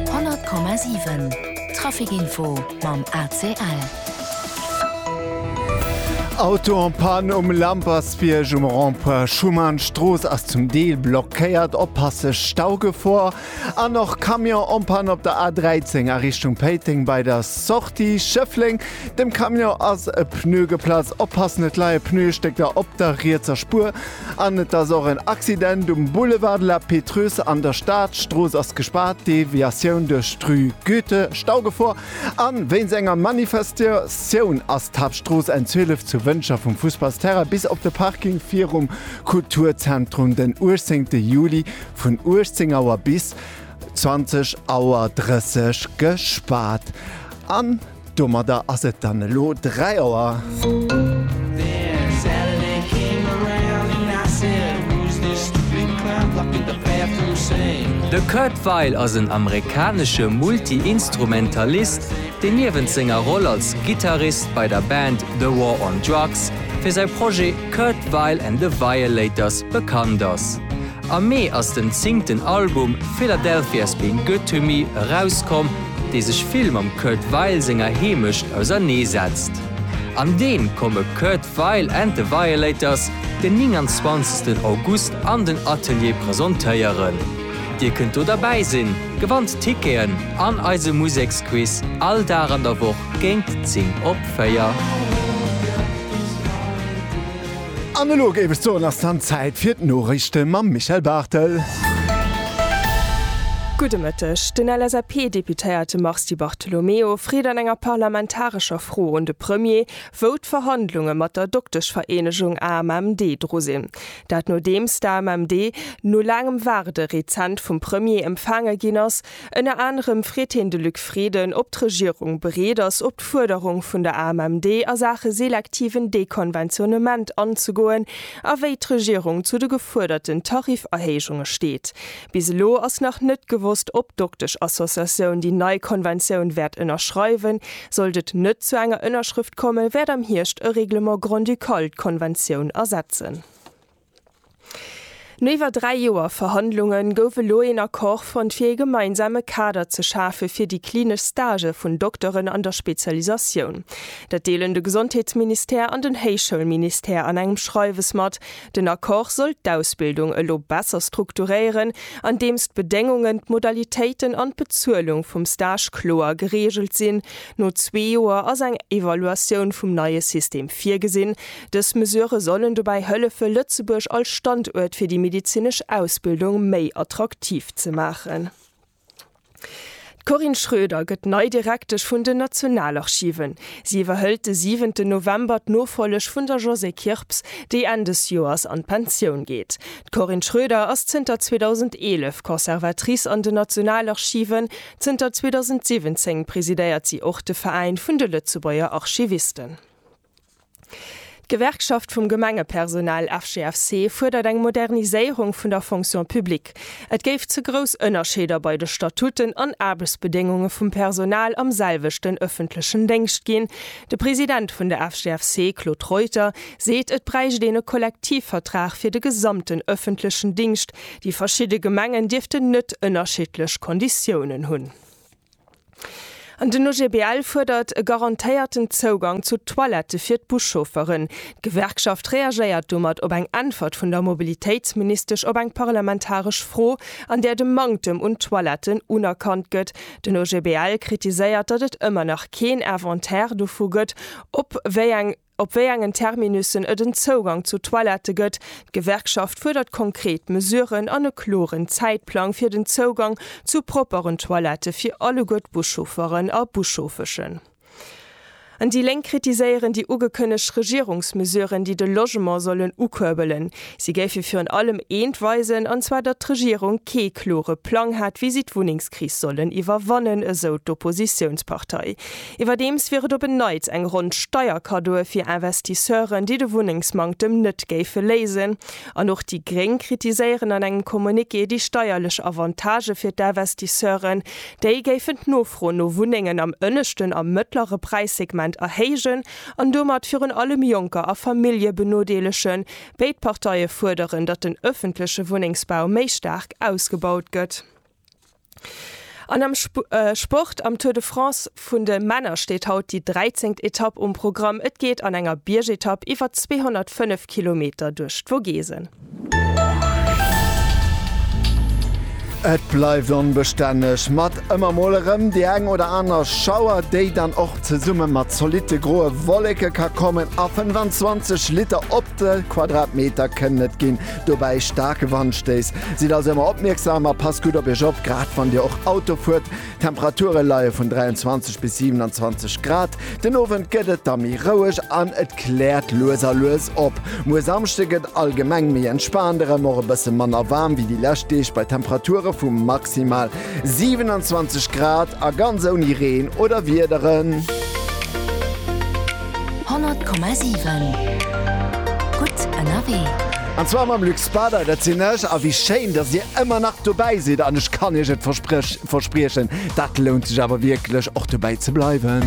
100,7 Trafic Info mam ACL. Auto en panne um Lampersbierg um Rond-point Schuman, d'Strooss ass zum Deel blockéiert, oppasse Staugefor. An och Camion en panne op der A13 a Richtung Péiteng bei der Sortie Schëffleng. Dem Camion ass e Pneu geplatzt, oppassen et leie Pneustécker op der rietser Spuer. An et ass och en Accident um Boulevard de la Pétreuse an der Stad. D'Strooss ass gespaart, d'Deviatioun duerch d'Rue Goethe Staugefor. A wéinst enger Manifestatioun ass d'Haaptstrooss N 12 zu Wëncher vum Fussballsterrain bis op de Parking virum Kulturzentrum den 18 Juli vun 18 Auer bis 20 Auer 30 gespaart. Domadder ass et dann elo 3 Auer. De Kurt Weill ass en amerikanesche Multi-Instrumentalist, deen niewent senger Roll als Gittarist bei der Band The War on Drugs fir säi Projet Kurt Weill and the Violators bekannt ass. Am Mee ass den zéngten Album Philadelphia's Been Good to Me erauskomm, dee sech vill mam Kurt Weill senger Heemecht ausernee setzt. An deem komme Kurt Weill and the Violators den 29 August an den Atelier presentéieren. Dir kënnt do derbäi sinn, gewannt Ticketen an eise Museksquiz all Dag an der Woch géint 10 op 4. An elo géif ech soen, ass dann Zäit fir d'Noriichte mam Michel Barthel. Gudde Mëtteg. Den LSAP-Deputéierte Mars Di Bartolomeo freet an enger parlamentarescher Fro un de Premier, wou d'Verhandlunge mat der Dokteschvereenegung AMMD dru sinn. Dat nodeems d'AMMD no laangem Waarde rezent vum Premier empfaange ginn ass. Ënner anerem freet hien de Luc Frieden, ob d'Regierung bereet ass, op d'Fuerderung vun der AMMD a Saache selektiven Dekonventionnement anzegoen a wéi d'Regierung zu de gefuerderten Tarifferhéijunge steet. Bis elo ass nach net gewosst, ob d'Dokteschassociatioun déi nei Konventioun wäert ënnerschreiwen. Sollt et net zu enger Ënnerschrëft kommen, wäert am Hierscht e Règlement grand-ducal d'Konventioun ersetzen. No iwwer dräi Joer Verhandlunge gouf elo een Accord fonnt fir ee gemeinsame Kader ze schafe fir déi klinesch Stagë vun Dokteren an der Spezialisatioun. Dat deelen de Gesondheetsministère an den Héichschoulministère an engem Schreiwes mat. Den Accord soll d'Ausbildung elo besser strukturéieren, andeems d'Bedéngungen, d'Modalitéiten an d'Bezuelung vum Stage kloer gereegelt sinn. No zwee Joer ass eng Evaluatioun vum neie System virgesinn, Dës Mesurë sollen dobäi hëllefe Lëtzebuerg als Standuert fir déi medezinesch Ausbildung méi attraktiv ze maachen. D'Corinne Schroeder gëtt nei Direktesch vun den Nationalarchiven. Si iwwerhëlt de siwenten November d'Nofolleg vun der Josée Kirps, déi Enn des Joers an d'Pensioun geet. D'Corinne Schroeder ass zënter 2011 Conservatrice an den Nationalarchiven. Zënter 2017 presidéiert si och de Veräin vun de Lëtzebuerger Archivisten. D'Gewerkschaft vum Gemengepersonal FGFC fuerdert eng Moderniséierung vun der Fonction publique. Et géif ze grouss Ënnerscheeder bei de Statuten an Aarbechtsbedéngunge vum Personal am selwechten ëffentlechen Déngscht ginn. De President vun der FGFC, Claude Reuter, seet, et bräicht een e Kollektivvertrag fir de gesamten ëffentlechen Dingscht. Déi verschidde Gemengen dierften net ënnerschiddlech Konditiounen hunn. An den OGBL fuerdert e garantéierten Zougang zu Toilette fir d'Buschaufferen. D'Gewerkschaft reagéiert domat op eng Äntwert vun der Mobilitéitsministesch op eng parlamentaresch Fro, an där de Manktem un Toiletten unerkannt gëtt. Den OGBL kritiséiert, datt et ëmmer nach keen Inventaire dovu gëtt, op wéi eng. Op wéi engen Terminussen et en Zougang zu Toilette gëtt. D'Gewerkschaft fuerdert konkret Mesuren an e kloren Zäitplang fir den Zougang zu propperen Toilette fir alleguer d'Buschaufferen a Buschauffeschen. An déi Lénk kritiséieren déi ugekënnegt Regierungsmesuren, déi de Logement sollen ukuerbelen. Si géife virun allem eent weisen, an zwar datt d'Regierung kee klore Plang hätt, wéi si d'Wunnengskris sollen iwwerwannen, esou d'Oppositiounspartei. Iwwerdeems wier et op en Neits eng Ronn Steierkaddoe fir Investisseuren, déi de Wunnengsmanktem net géife léisen. An och déi Gréng kritiséieren an engem Communiqué déi steierlech Avantagë fir d'Investisseuren. Déi géifen d'Nofro no Wunnengen am ënneschten a mëttlere Präissegment erhéijen an domat virun allem Jonker a Famillje benodeelegen. Béid Parteie fuerderen, datt den ëffentleche Wunnengsbau méi staark ausgebaut gëtt. An am Sport, Am Tour de France vun de Männer steet haut déi 13. Etapp um Programm. Et geet an enger Biergetapp iwwer 205 Kilometer duerch d'Vogesen. Et bleift onbestänneg, mat ëmmer mol erëm déi eng oder aner Schauer, déi dann och zesumme mat zolitte groe Wolleke ka kommen. A 25 Liter op de Quadratmeter kënnen et ginn. Dobäi staarke Wandstéiss. Sidd also ëmmer opmierksam a passt gutt op Iech op, grad wann Dir och Auto fuert. D'Temperature leie vun 23 bis 27 Grad. Den Owend gëtt et da méi roueg an et kläert lues a lues op. Muer Samschde gëtt allgemeng méi entspaant erëm, och e bësse manner waarm wéi déi lescht Deeg bei Temperature vu maximal 27 Grad a ganz ouni Reen oder Wiederen. 100,7 Gutt ënnerwee. An zwar mam Luc Spader, dat sinn ech. A wéi schéin, datt Dir ëmmer nach dobäi sidd. An ech kann Iech et verspriechen, dat lount sech awer wierklech, och dobäi ze bleiwen.